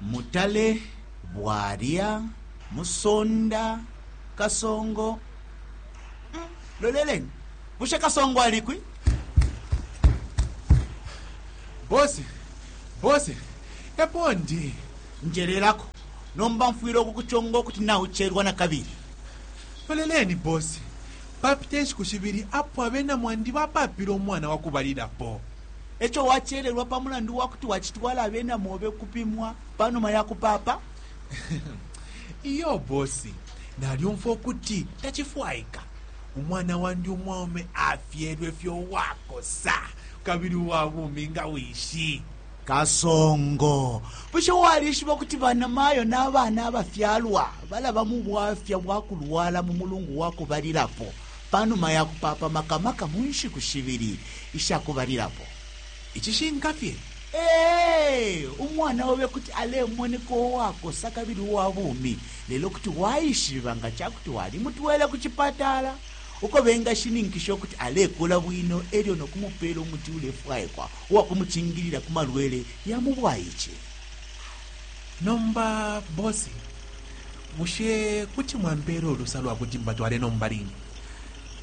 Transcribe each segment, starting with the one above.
Mutale, Bwalya, Musonda, Kasongo, mm, loleleni bushe Kasongo alikwi? Bose, bose, epo ndi. Njelelako, nomba mfwile ukukuchonga ukuti nauchelwa na kabili. Loleleni bose, papite nshiku shibili apo abena mwandi bapapile umwana wakubalilapo. E co wacelelwa pa mulandu wa kuti wacitwala abena mobe ukupimwa pa numa ya kupaapa? Iyo bosi, nalyumfwa ukuti tacifwaika. Umwana wandi umwaume afyelwe fye uwakosa kabili uwa bumi nga wishi. Kasongo, bushe walishiba ukuti banamayo na bana abafyalwa balaba mu bwafya bwa kulwala mu mulungu wa kubalilapo? Pa numa ya kupapa maka maka mu nshiku shibili isha kubalilapo, icishinka fye, ee, umwana obe kuti alemoneka uwakosa kabili uwa bumi, lelo kuti waishiba nga ca kuti walimutwele ku cipatala uko bengashininkisha ukuti alekula bwino e lyo no kumupeela umuti ulefwaikwa uwa kumucingilila ku malwele ya mu bwaice. Nomba Boss, Bushe kuti mwampela ulusa lwakuti mbatwale nombaline?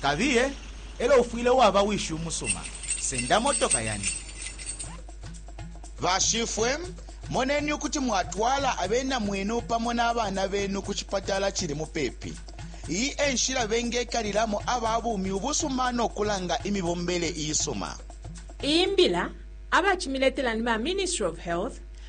Kabiye, elyo ufwile waba wishi umusuma. Senda motoka yandi. Bashifwe, moneni ukuti mwatwala abena mwenu pamo nabana benu kucipatala cili mupepi. Iyi enshila bengekalilamo aba bumi ubusuma nokulanga imibombele iisuma. Iyi mbila abacimiletela ni ba Ministry of Health